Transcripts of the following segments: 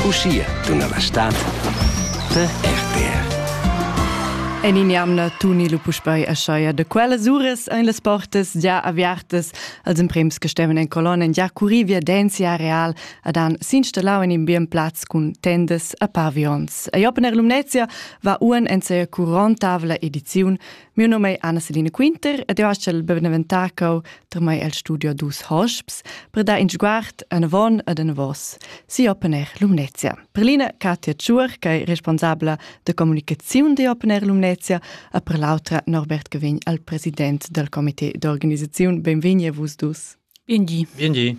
Uschia tuna la stad per RTR. En in'jamna tuni lu puspei escheia de quellas uras ein las portas già aviartas als emprems che steven en colonna en già curri viadensia real ad han s'installau in in bien plaz cun tendas a pavions. A Jopener Lumnezia va uan en seia curontavla ediziun Mio nome è Anna-Celine Quinter ed io aschel beneventà cau tra mai el studio dus hosps per dar in sguard anavon ad anavos si Open Air Lumnezia. Per l'ina Katia Tschuer, che è responsabla de comunicazione di Open Air Lumnezia e per l'altra Norbert Gevin, al president del comité d'organizzazione. Benvegni a vus dus. Biengi. Biengi.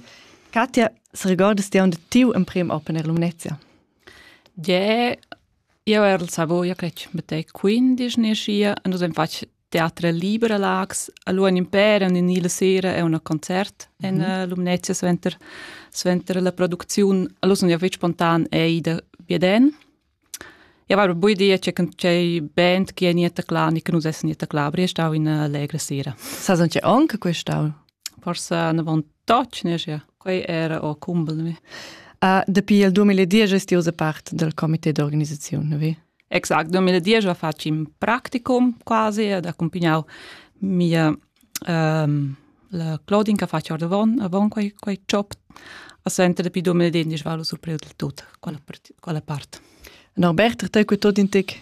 Katia, se ricordas ti un de tiu emprem Open Air Lumnezia? Je Io eral savoia che mettei quindisch nescia e nus hain fatg teatre liber a Laax. Alura in impè, un ni la sera e un concert en mm Lumnezia suenter, suenter la producziun. Allura sun jau fitg spontan e ida via den. Ja var bu idea che can c'è band che è niente cla ni che nus essen niente cla, aber è stau in allegra sera. Sa son c'è anche quest'anno? Forsa ne vantatgna schia, quei era o cumbel mi. Uh, dapi il 2010 est ti part del comité d'organisazione, vi? Exact, 2010 ho fatg in practicum quasi ed accompagnau mia um, la Claudine che faccia ordavon, avon quei, quei job a sente dapi 2010 va lo surpreu del tut quella, quella part. Norbert, te cu tot in tec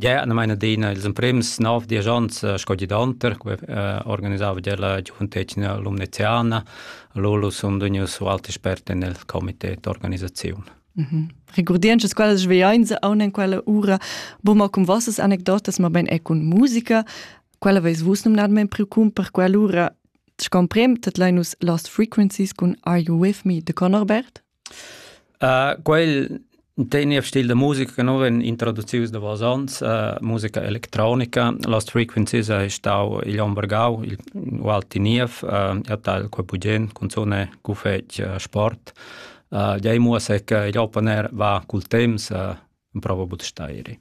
Gia na maina adina ils emprims nov diesch onns eh, sco gidanter, que eh, organisava gia la giuventetgna lumneziana. Lolo sun vegnius alt expert en el comité d'organisaziun. Mm -hmm. Regurdienschas quellas sveainza aun en quella ura, bu ma cum vossas anecdotas, ma ben e cun musica, quella veis vus numnadmen preoccup per quell'ura, scomprem, tat leinus Lost Frequencies cun Are You With Me de Conor Bert? Quel tegna stil da musica che no vegn introducius davos ons, musica electronica. Lost Frequencies es stau igl onn vargau il Walti Niev, atal quei bugen, cunzun è ch'uffeci sport. Gliei muossa che igl open air va cul temps, emprova buca da steiri.